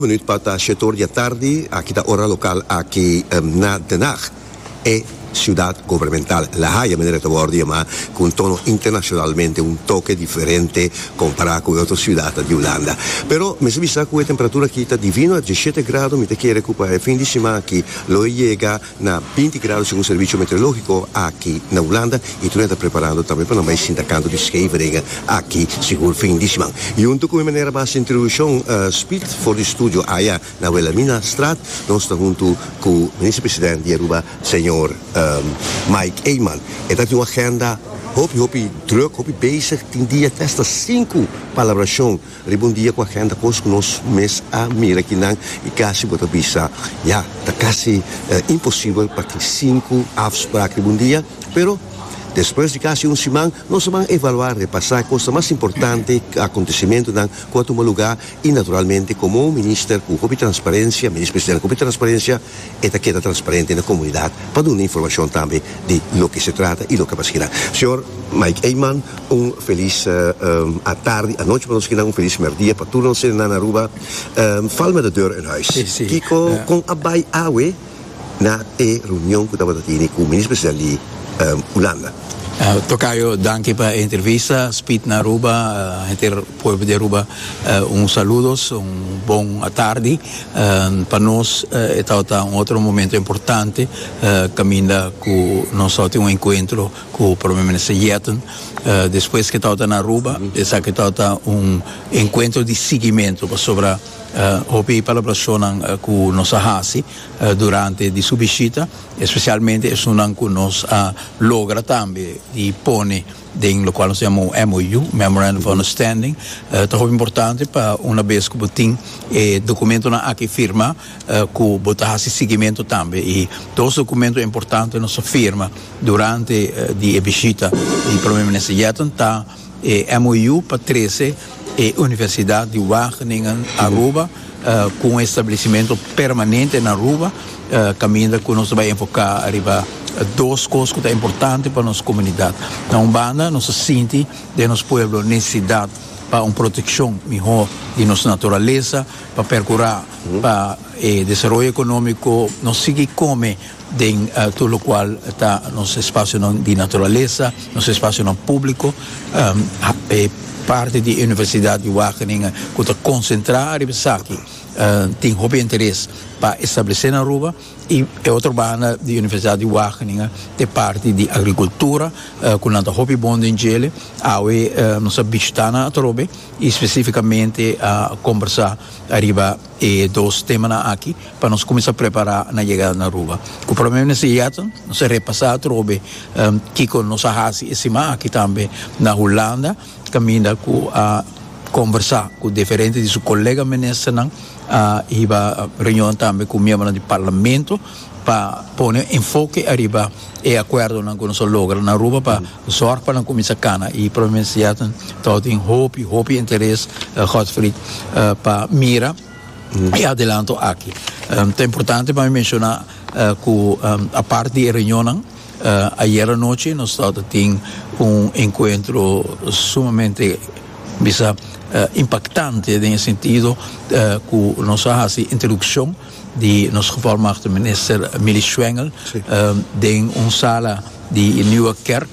Minuut palta shetoor di atardi, aki ta ora local aki na Den Haag, e ciudad gobernamental. La Haya manera e ta wordo yama cu un tono internacionalmente un toke diferente compara cu e otro ciudadnan di Hulanda. Pero mester bisa cu e temperatura aki ta divino, a diesisiete grado, mi ta kere cu pa e fin di siman aki lo e yega. na binti grado segun servicio meteorologico aki na Hulanda y tur nan ta preparando tambe pa nan bay sinta canto di Scheveningen aki sigur fin di siman. Junto cu mi manera basi introduccion spiet for di studio aya na Wilhelmina straat nos ta hunto cu Minister President di Aruba señor Mike Eman. E ta tin un agenda hopi hopi druk hopi bezig tin dia festa sinku pa elaboracion. Riba un dia ku agenda kos ku nos mes a mira kinan i kasi bo ta bisa, ya ta kasi imposibel pa tin sinku afsprak riba un dia. Pero, despues di kasi un siman, nos a ban evaluá, repasá kosnan mas importante, akontesimentunan ku a tuma lugá i naturalmente komo un minister ku hopi transparensia, minister presidente ku hopi transparensia, e ta keda transparente na komunidat pa duna informashon tambe di loke se trata i loke a paskinan. Señor Mike Eijman un felis atardi, anochi pa nos kinan, un felis merdia pa tur nos serenan Aruba. Val met de deur uit huis. Kiko, kon a bai awe na e reunion ku tabata tini ku Minister President di Hulanda? Tokayo, danki pa e entrevista. Spied na Aruba, henter Pueblo di Aruba un saludos un bon atardi pa nos e tabata un otro momento importante caminda cu nos taba tin un encuentro cu Prome Minister Yetten despues que tabata na Aruba esaki tabata un encuentro di siguimento pasobra hopi palablacionan cu nos a haci durante di su bishita especialmente esunnan cu nos a logra tambe di pone den locual nos ta yama un MOU, Memorandum of Understanding, ta hopi importante pa una bes cu bo tin e documentonan aki firma cu bo ta haci siguiemento tambe y dos documento importante nos a firma durante di e bishita di Prome Minister Yetten ta e MOU pa trece E Universidad di Wageningen Aruba cu un establecimento permanente na Aruba caminda cu nos ta bai enfoca riba dos cos cu ta importante pa nos comunidad. Na un banda nos ta sinti den nos pueblo necesidad pa un proteccion miho di nos naturaleza pa percura pa e desaroyo economico nos sigui come den tur lokual ta nos espasionan di naturalesa, nos espasionan públiko, e parti di Universidat di Wageningen ku ta konsentrá ariba esaki tin hopi interes pa establesé na Aruba i e otro banda di Universidat di Wageningen ta e parti di agrikultura ku nan ta hopi bon den djele. Awe nos a bishitá nan atrobe i spesifikamente a kombersá ariba. e dos temanan aki pa nos cuminsa prepara na yegada na Aruba. Cu Prome Minister Yeatten nos a repasa atrobe kico nos a haci e siman aki tambe na Hulanda caminda cu a conversa cu diferente di su colega ministernan, a hiba reunion tambe cu miembronan di Parlamento pa pone enfoke ariba e akuerdonan ku nos a logra na Aruba pa zòrg pa nan kuminsá kana i Prome Minister Yetten ta tin hopi hopi interes Godfried pa mira e adelanto aki. Ta importante pa mi menshoná ku apart di e reunionnan ayera anochi nos ta tin un enkuentro sumamente bisa impaktante den e sentido ku nos a hasi introdukshon di nos gevolmachtig minister Milly Schwengel den un sala di e Nieuwe Kerk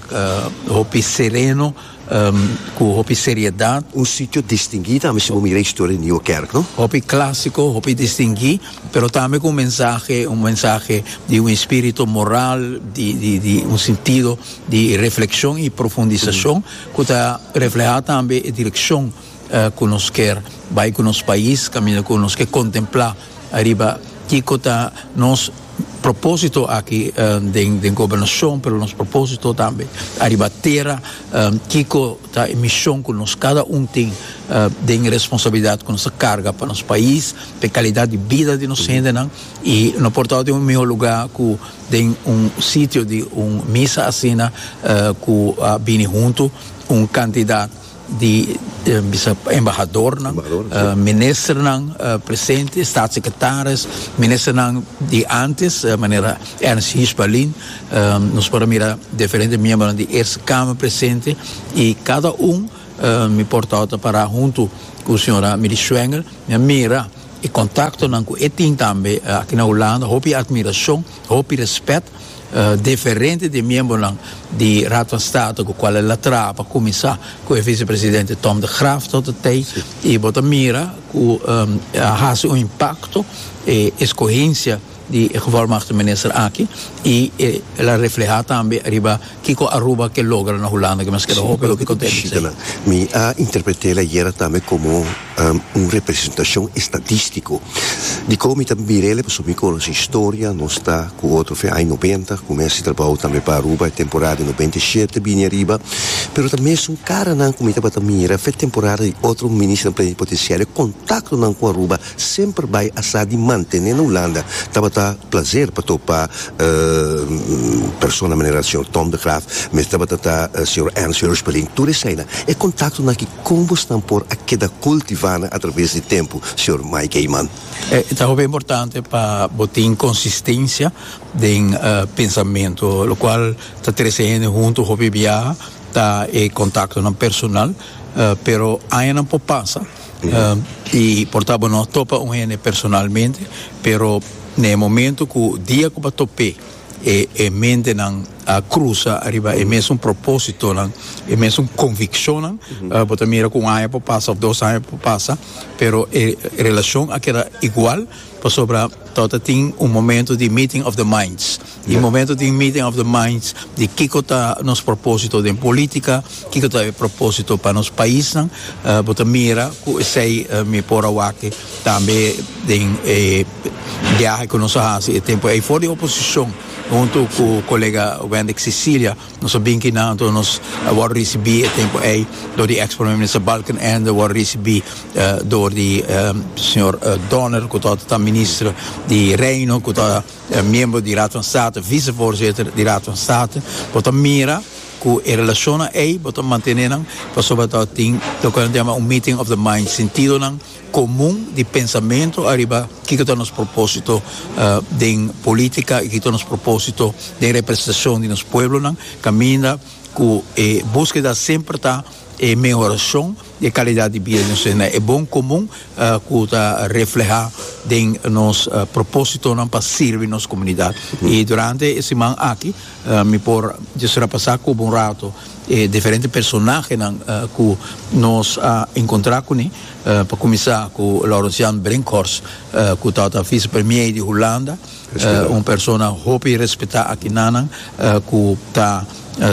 hopi sereno cu hopi seriedad. Un sitio distingui tambe si bo mira e historia di Nieuwe Kerk, no? Hopi clasico, hopi distingui, pero tambe cu un mensahe, un mensahe di un espirito moral, di di un sentido di refleccion y profundisacion cu ta refleha tambe e direccion cu nos kier bay cu nos pais caminda cu nos ke contempla ariba kico ta nos proposito aki den gobernacion pero nos proposito tambe ariba tera kico ta e mision cu nos cada un tin den e responsabilidad cu nos ta carga pa nos pais pa e calidad di bida di nos hendenan y no por tawata den un miho lugar cu den un sitio di un misa asina cu a bini hunto un cantidad di bisa embahadornan, ministernan presente, staatssecretaris, ministernan di antes manera Ernst Hiersbalin, nos por a mira diferente miembronan di Eerste Kamer presente y cada un mi portao ta para hunto cu señora Millie Schwengel mi a mira e contactonan cu e tin tambe aki na Hulanda hopi admiracion Hopi respet deferente di e miembonan di Raad van State cu cual el a traha pa cuminsa cu e vicepresidente Tom de Graaf tot e tey y bo ta mira cu a haci un impacto e escogencia di e gevolmagte minister aki y el a refleha tambe riba kico Aruba ke logra na Hulanda cu nos keda hopi hopi contento. Mi a interpret'el ayera tambe como. un representashon estatístiko di kou mi ta mira el, pasobra mi konosé historia, nos ta ku otro fen aña noventa, kumins di trabou tambe pa Aruba, e temporada di noventa i shete bini ariba, pero ta mesun karanan ku mi tabata mira fen temporada di otro Ministernan Plenipotenciario, e kontaktonan ku Aruba semper bai asá di mantené na Hulanda, tabata plaser pa topa persona manera señor Tom de Graaf, mes tabata ta señor Ernst Heuschbeling, tur eseinan, e kontaktonan ki Kon bo esnan por a keda kultivá nan atraves di tempu, señor Mike Heyman? E ta hopi importante pa bo tin konsistensia den pensamentu, lokual ta trese hende huntu. Hopi biaha ta e kontaktonan personal, pero añanan por pasa i por ta bo no a topa un hende personalmente, pero na e momentu ku dia ku bo a top'é e mentenan a cruza ariba e mesun propositonan, e mesun conviccionnan, bo ta mira cu un aña por pasa of dos aña por pasa pero e relacion a keda igual pasobra to ta tin un momento di meeting of the minds, y e momento tin meeting of the minds di kico ta nos proposito den politica, kico ta e proposito pa nos paisnan, bo ta mira cu esey mi por a wak tambe den e biahe cu nos a haci e tempo ey for di oposicion. Huntu ku kolega Wendic Cecilia nos a bin kina anto nos a wòrdu risibí e tempu ei dor di eks Prome Minister Balkenende, wòrdu risibí dor di señor Donner ku torta ta Minister di Reino ku ta miembro di Raad van State, visevoorzitter di Raad van State. Bo ta mira ku e relashonnan ei bo ta mantené nan pasobra torta tin loke nan ta yama un meeting of the minds, sintidonan komun di pensamentu ariba kiko ta nos propósito den polítika i kiko ta nos propósito den representashon di nos pueblonan kaminda ku e buskeda semper ta e mehorashon di e kalidat di bida di nos hende e bon komun ku ta reflehá den nos propósitonan pa sirbi nos komunidat i durante e siman aki mi por disfrapasá kubu un rato E diferente personahenan ku nos a enkontrá kuné, pa kuminsá ku Laurens Jan Brinkhorst, ku tabata visepremier di Hulanda, un persona hopi respetá aki nanan, ku ta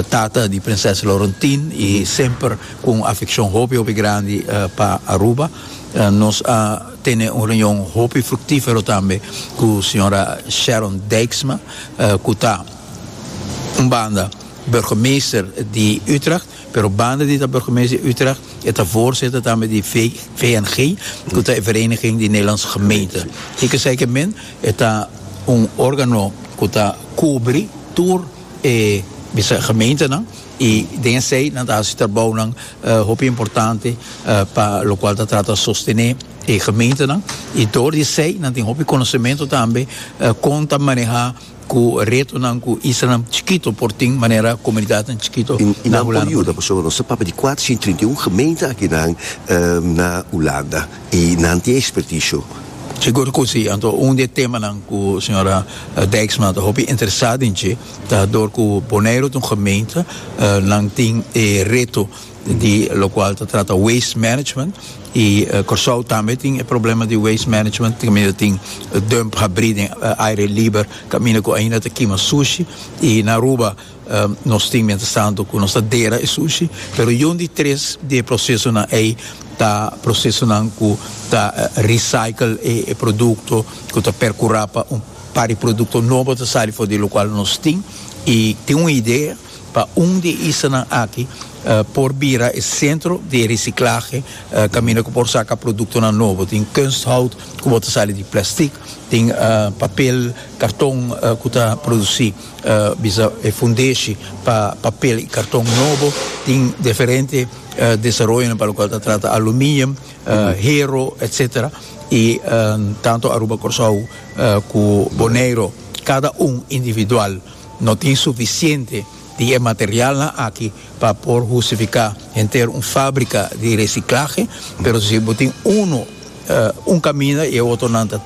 tata di Prinses Laurentien i semper ku un afekshon hopi hopi grandi pa Aruba. Nos a tene un reunion hopi fruktífero tambe ku señora Sharon Dijksma, ku ta un banda, Burgemeester di Utrecht, pero banda di ta burgemeester di Utrecht e ta voorzitter tambe di VNG, ku ta e Vereniging di Nederlandse Gemeenten. Hik'e sa hik'e men e ta un organo ku ta kubri tur e bisa gemeentenan i den esei nan ta hasi trabounan hopi importante pa lokual ta trata sostené e gemeentenan i dor di esei nan tin hopi konosementu tambe kon ta manehá Ku retonan ku islanan chikito por tin manera komunidatnan chikito na Hulanda por tin. I nan por yuda pasobra nos ta papia di kuater sien trinta i un gemeente akinan na Hulanda i nan tin ekspertisio. Sigur ku si. Anto un di e temanan ku señora Dijksma ta hopi interesá den dje ta dor ku Boneiru ta un gemeente nan tin e reto di lokual ta trata waste management. Y Corsou tambe tin e problema di waste management caminda tin dump habri den aire liber caminda cu ainda ta kima sushi y na Aruba nos tin mientras tanto cu nos ta dera e sushi pero yon di tres di e procesonan ey ta procesonan cu ta recycle e producto cu ta percura pa un par di producto nobo ta sali for di e locual nos tin y tin un idea pa un di e islanan aki por bira e sentro di e risiclahe caminda cu por saca productonan nobo, tin kunsthout cu bo ta sali di plastic, tin papel, carton cu ta produci bisa e fundeshi pa papel y carton nobo, tin diferente desaroyonan pa locual ta trata aluminium, hero etc. Y tanto Aruba, Corsou cu Boneiro cada un individual. No tin sufisiente di e materialnan aki pa por hustifica henter un fabrica di reciclahe, pero si bo tin unu, un caminda y e otronan ta.